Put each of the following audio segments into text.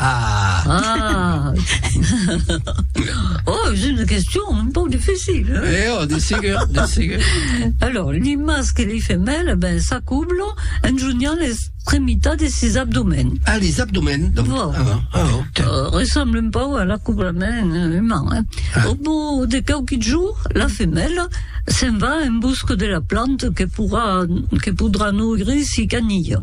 Ah! Oh, es una question un pauc dificil, hein? Eh oh, de segur, de segur. Alors, li masc e li femèl, eh ben, s'acoblan en jonhant l'extremitat de sis abdomèns. Ah, les abdomèns, donc. Bon. Ah, bon. ah, bon. Tiens. Euh, ressemble un pauc à l'acoblament euh, humain, hein? Ah. Au bout de quelques jours, la femèla se'n va en busca de la planta que, pourra, que podrà nourrir si canilla.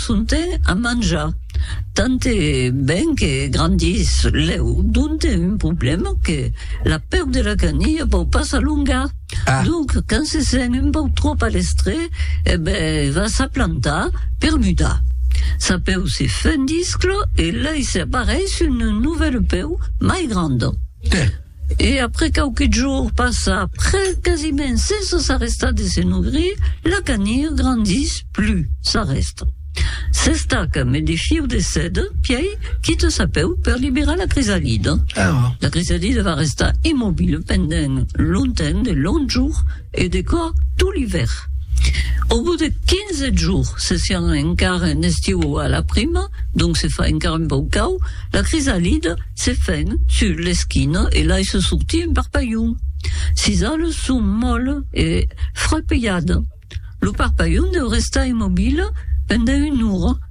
Sonte a manjar tant e ben que grandís lèu, donte un problèma que la pèu de la canilha pòu pas s'alongar. Ah. Donc, quand se sent un pòu tròp a l'estre, e ben va s'aplantar per mudar. Sa pèu se fendiscla e lei se apareis un novèl pèu mai grand. Tè. E après quauqui jours passa après quasiment sense s'arrestar de se nogrir, la canir grandís plus, s'arrèsta. S'estaca me de fiu de seda pièi quita sa pèu per liberar la crisalida. La crisalida va restar immobile pendent longtemps de longs jours, E de quò tot l'ivèr. Au bout de quinze jours, se siam encara en estiu o a la prima, donc se fa encara un pauc cau, la crisalida se fèn sus l'esquina e laissa sortir un parpalhon. Sis ales son molle e frapejadas. Lo parpalhon deu restar immobile pendent una ora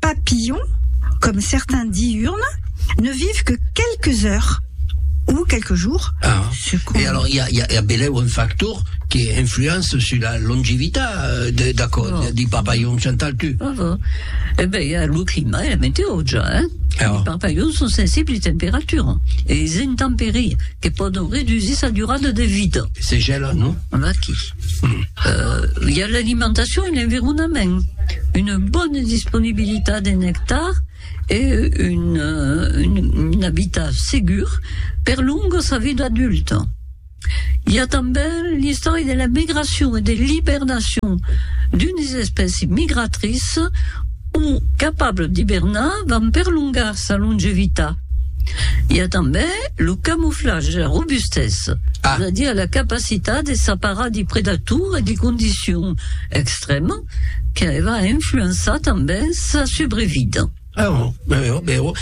papillon, comme certains diurnes, ne vivent que quelques heures ou quelques jours. Ah, e alors i a, i a, i a belèu un factor que influence sur la longivita de, d'aquò, oh. di papillon, Chantal, tu? Oh, oh. Eh ben, i a lo clima e la meteo, ja, eh? Ah. Li papillons son sensibles a temperatura e es intemperie que pòdon redusir sa durada de vida. Se gèlan, non? Aquí. Hi a l'alimentacion e l'environament, una bona disponibilitat en nectar e un abitat segur per longa sa vida adulta. Hi a tanben l'istòria de la migracion e de l'ibernacion d'unes espècies migratrices, Un capable d'ibernar van perlongar sa longevita. I a tanben lo camoflatge, la robustesa, ah. es a dire la capacitat de s'aparar de predator e de condicions extrèmas que va influençar tanben sa subrevida. Ah, vero, vero.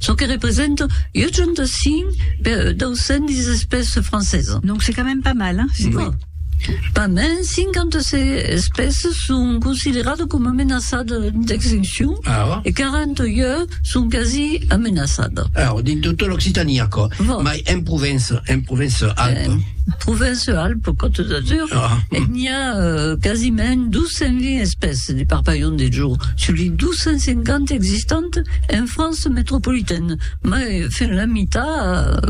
Çò que representa 85 per 210 espèces francesas. Donc c'est quand même pas mal, hein? Bon. Pas mens 56 espèces son considerades coma menaçadas d'extincion ah. e 41 son quasi amenaçadas. Alors, ah, dins tota l'Occitània, quoi. Bon. Mais en Provence, en Provence-Alpes. En Provence-Alpes, Côte d'Azur, ah. n'hi a a quasiment 220 espèces de parpalhons de jo sus li 250 existants en França metropolitaine, mai fin la mitat,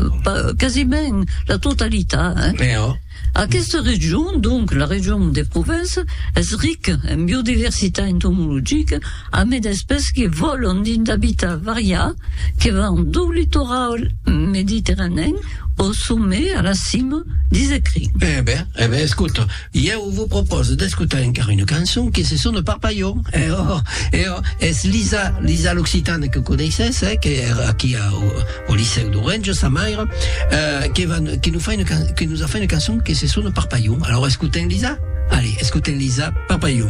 quasiment la totalitat. Hein? Eh oh. Aquesta region, donc la region de Provença, es rica en biodiversitat entomologica amé d'espèces que vòlan dins d'habitats variats que van dau litoral mediterranèen Au sommet, à la cime, dis e cri. Eh ben, eh ben, escota, ieu vos propòse d'escotar encara una cançon que se sona Parpalhon. Eh oh, eh oh, es Lisa, Lisa l'Occitane que coneissètz, eh, que èra aquí au, au Licèu d'Orenja, sa maire, eh, que va, que nos fa una can, que nos a fait una cançon que se sona Parpalhon. Alors, escotem Lisa? Allez, escotem Lisa, Parpalhon.